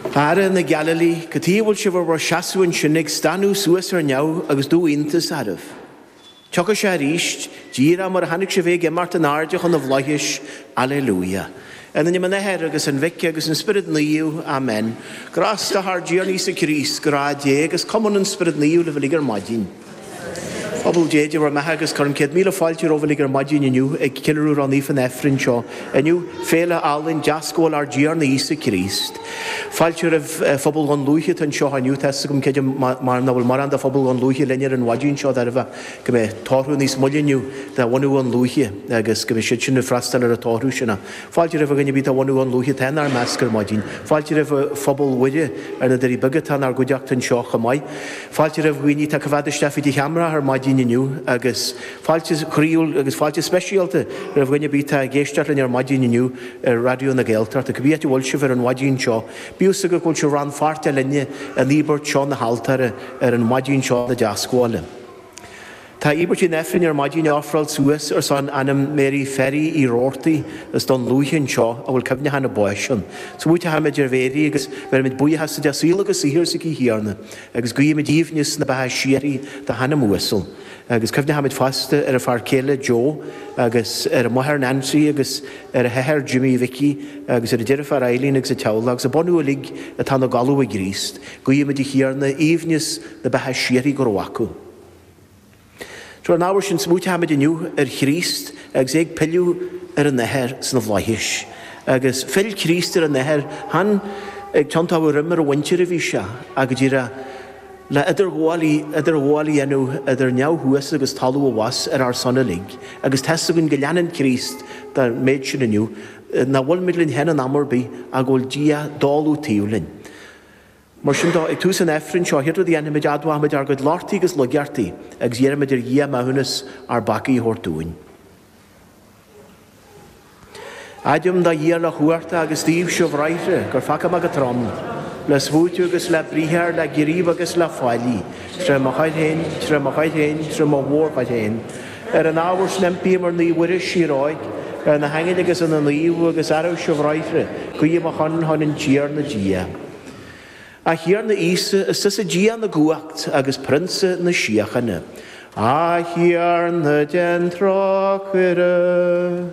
A fheara na Gailíle, cad chuige a bhfuil sibh ar bhur seasamh ansin ag stánadh suas ar neamh agus dubh iontas oraibh. Tiocfaidh sé arís, díreach mar a chonaic sibh é ag imeacht in airde chun na bhFlaithis. Alelúía. In ainm an Athair agus an Mhic agus an Spioraid Naoimh. Amen. Grásta ár dTiarna Íosa Críost, grá Dé agus cumann an Spioraid Naoimh libh uilig ar maidin. Phobal Dé Dé bhur mbeatha agus cuirim céad míle fáilte romhaibh uilig ar maidín inniu ag ceiliúradh ró-naofa an Aifrinn seo inniu, Féile álainn Deascabháil Ár dTiarna Íosa Críost. Fáilte roimh Phobal Dhún Lúiche atá anseo inniu, tá fhios agam creidim mar nach bhfuil mórán de Phobal Dhún Lúiche linn ar an mhaidín seo de thairbhe go mbeidh tórramh níos moille inniu de bhunadh Dhún Lúiche agus go mbeidh siad sin ag freastáil ar an tórramh sin. Fáilte roimh dhuine ar bith de bhunadh Dhún Lúiche atá inár measc ar maidín. Fáilte roimh Phobal Mhuire ar na Doirí Beaga atá inár gcuideachta anseo chomh maith. Fáilte roimh dhaoine atá ag coimhéad isteach fríd an cheamara ar maidin inniu agus fáilte chroíúil agus fáilte speisialta roimh dhuine ar bith atá ag éisteacht linn ar maidin inniu ar Raidió na Gaeltachta. Cibé áit a bhfuil sibh ar an mhaidín seo, bíodh a fhios agaibh go bhfuil sibh rannpháirteach linne in íobairt seo na haltóra ar an mhaidín seo na Deascabhála. Tá íobairt an Aifrinn ar maidin á ofráil suas ar son anam Mary Ferry Uí Robhartaigh as Dún Lúiche anseo a bhfuil cuimhneachán a báis ann. Smaoitímid ar Mhary agus beirimid buíochas duit as saol agus saothar s'aici, a Thiarna agus guímid aoibhneas na beatha síoraí dá hanam uasal. Agus cuimhnímid fosta ar a fear céile Joe agus ar a máthair Nancy agus ar a hathair Jimmy Mhicí agus ar a deirfiúr Eileen agus a teaghlach agus a bunadh uilig atá ina gcodladh i gCríost. Guímid, a Thiarna, aoibhneas na beatha síoraí go raibh acu. Ar an ábhar sin smaoitímid inniu ar Chríost agus é ag pilleadh ar an Athair sna bhFlaithis. Agus phill Críost ar an Athair, chan ag tiontú a dhroim ar a mhuintir a bhí sé, ach go díreach le idirghabháil a dhéanamh idir neamh thuas agus talamh abhus ar ár son uilig. Agus tá's againn go leanann Críost den mhéid sin inniu. Nach bhfuil muid linn féin in am ar bith, ach go bhfuil Dia i dtólamh taobh linn. Mar sin de, ag tús an Aifrinn seo, chéad rud a dhéanfaimid, admhaímid ár gcuid lochtaí agus laigeachtaí agus iarraimid ar Dhia maithiúnas ár bpeacaí a thabhairt dúinn. Admhaím do Dhia uilechumhachtach agus daoibhse, a bhráithre, gur pheacaigh mé go trom, le smaoitiú agus le briathar, le gníomh agus le faillí, tré mo choir féin, tré mo choir féin, tré mo mhór-choir féin, Ar an ábhar sin impím ar Naomh Mhuire, síor-Óigh, ar na haingil agus ar na naoimh agus oraibhse, a bhráithre, guí ar mo shon chun ár dTiarna Dia. A Thiarna Íosa, is tusa Dia na gcumhacht agus Prionsa na síochána. A Thiarna, déan trócaire.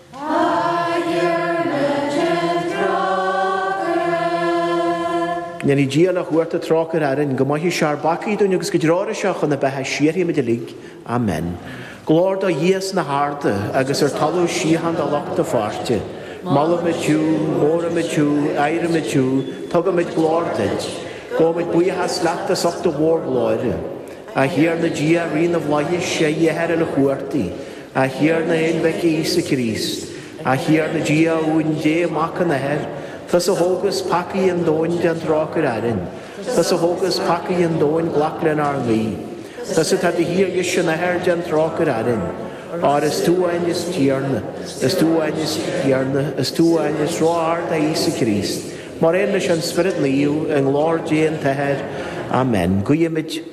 Go ndéana Dia uilechumhachtach trócaire orainn. Go maithe sé ár bpeacaí dúinn agus go dtreoraí sé chun na beatha síoraí muid uilig. Amen. Glóir do Dhia sna harda agus ar talamh síocháin do lucht a pháirte. Molaimid thú, móraimid thú, adhraimid thú, tugaimid glóir duit. Gabhaimid buíochas leat as ucht do mhórghlóire. A Thiarna Dia, Rí na bhFlaitheas, a Dhia a Athair uilechumhachtaigh. A Thiarna a Aonmhic Íosa Críost, A Thiarna Dia a Uain Dé Mac an Athar, Tusa a thógas peacaí an domhain déan trócaire orainn, Tusa a thógas peacaí an domhain glac lenár nguí, Tusa atá i do shuí ar dheis an Athar déan trócaire orainn, Óir is tú amháin is Tiarna, is tú amháin is Tiarna, is tú amháin is ró-ard a Íosa Críost, mar aon leis an Spiorad Naomh, i nglóir Dé an tAthair. Amen. Guímid.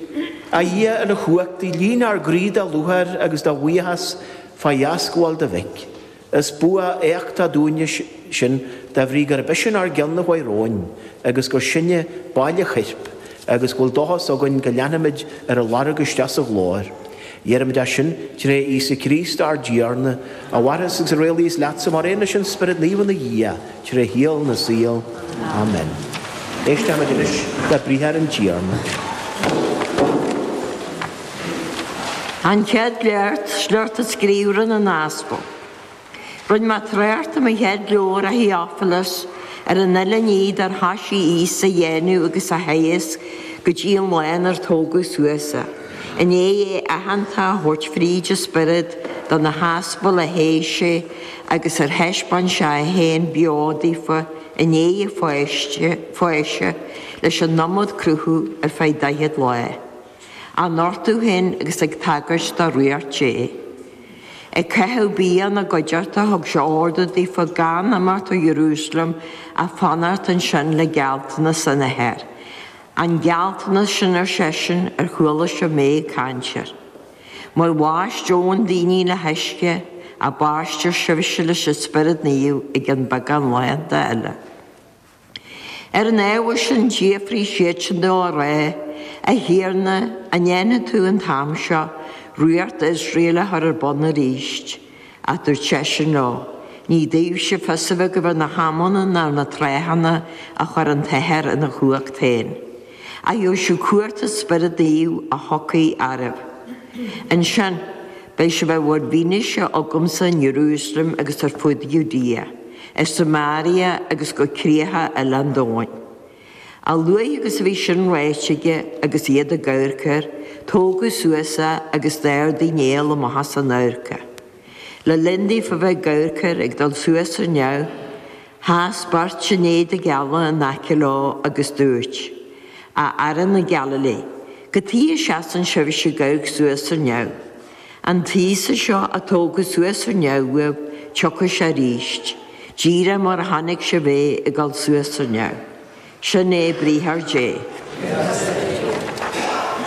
A Dhia uilechumhachtaigh, líon ár gcroí de lúcháir agus de bhuíochas fá dheascabháil do Mhic. Is bua éachtach dúinne sin de bhrí gurb eisean ár gceann a chuaigh romhainn agus gur sinne baill a choirp agus go bhfuil dóchas againn go leanfaimid ar a lorg isteach sa ghlóir. Iarraimid é sin tré Íosa Críost ár dTiarna, a mhaireas agus a rialaíos leatsa mar aon leis an Spiorad Naomh ina Dhia, Tré shaol na saol. Amen. Éistimid anois le briathar an Tiarna. An Chéad Léacht, Sliocht as Gníomhartha na nAspal. Rinne mé trácht i mo chéad leabhar a Theophilus ar an uile ní dar thoisigh Íosa a dhéanamh agus a theagasc go dtí an lá inar tógadh suas é i ndiaidh é aitheanta a thabhairt fríd an Spiorad do na haspail a thogh sé agus ar thaispeáin sé é féin beo daofa i ndiaidh a pháise leis an iomad cruthú ar feadh 40 lá, á nochtadh féin agus ag tagairt do Ríocht Dé. Ag caitheamh bia ina gcuideachta thug sé ordú daofa gan imeacht ó Iarúsailéim ach fanacht ansin le gealltanas an Athar. An gealltanas sin ar seisean ar chuala sibh mé ag caint air. Mar bhaist Eoin daoine le huisce, ach baistfear sibhse leis an Spiorad Naomh i gcionn beagán laethanta eile. Ar an ábhar sin d'fhiafraigh siadsan de á rá, A Thiarna, an ndéanfaidh tú an t-am seo ríocht Iosrael a chur ar bun arís? Ach dúirt seisean leo. Ní daoibhse fios a bheith agaibh ar na hamanna ná ar na tráthanna a chuir an tAthair ina chumhacht féin. Ach gheobhaidh sibh cumhacht an Spioraid Naoimh a thiocfaidh oraibh. Ansin, beidh sibh in bhur bhfianaise agamsa in Iarúsailéim agus ar fud Judea, i Samaria agus go críocha uile an domhain. A luaithe agus a bhí sin ráite aige agus iad ag amharc air, tógadh suas é agus d'ardaigh néal amach as a n-amharc é. Le linn daofa a bheith ag amharc air ag dul suas ar neamh, sheas beirt in éadaí geala in aice leo agus dúirt, A fheara na Gailíle, cad chuige a seasann sibhse ag amharc suas ar neamh, An tÍosa seo a tógadh suas ar neamh, tiocfaidh sé aríst, díreach mar a chonaic sibh é ag dul suas ar neamh. Sin é briathar Dé.